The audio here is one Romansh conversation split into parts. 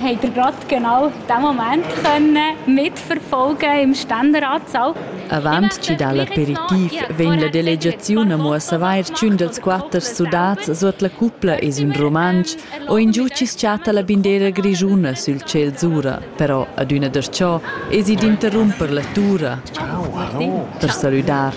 habt ihr gerade genau den Moment können mitverfolgen im Ständeratsaal. Avant chi dal aperitiv vegn la delegaziun a mo a savair ch'ün dels quatter sudats suot la cupla es ün Rumantsch o ingiù chi s-chatta la bindera grischuna sül tschel zura. Però adüna darchò esi d'interrumper la tura per salüdar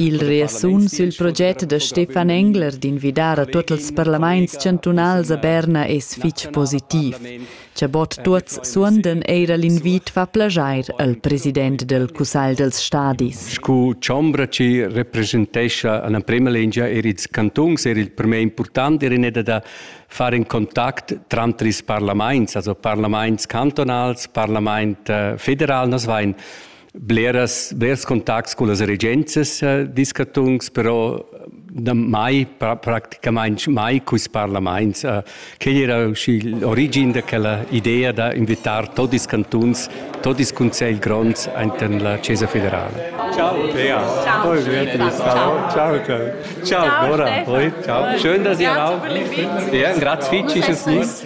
Il reasun sül proget da Stefan Engler d'invidar a tuot ils parlamaints chantunals a Berna es fich positiv. Cha bod tuots suondan eira l'invit fa plaschair al president del Cussagl dels stadis. Scu chombra chi representescha a la prema lingia er ils cantons er il premier important er in eda da far in contact tranter ils parlaments, also parlaments cantonals, parlament äh, federal, nas vain bleras, blers contacts con las regenzas eh, discatungs, però da mai, praticamente mai quis parlaments. Eh, quel era uscì l'origin da quella idea da invitar tutti i cantuns, tutti i consigli gronds in la Chiesa federale. Ciao Thea. Ciao. Poi ciao. Ciao, ciao. Ciao Nora. Ciao. Schön, dass ihr auch. Ja, grazie fitch ist es nicht.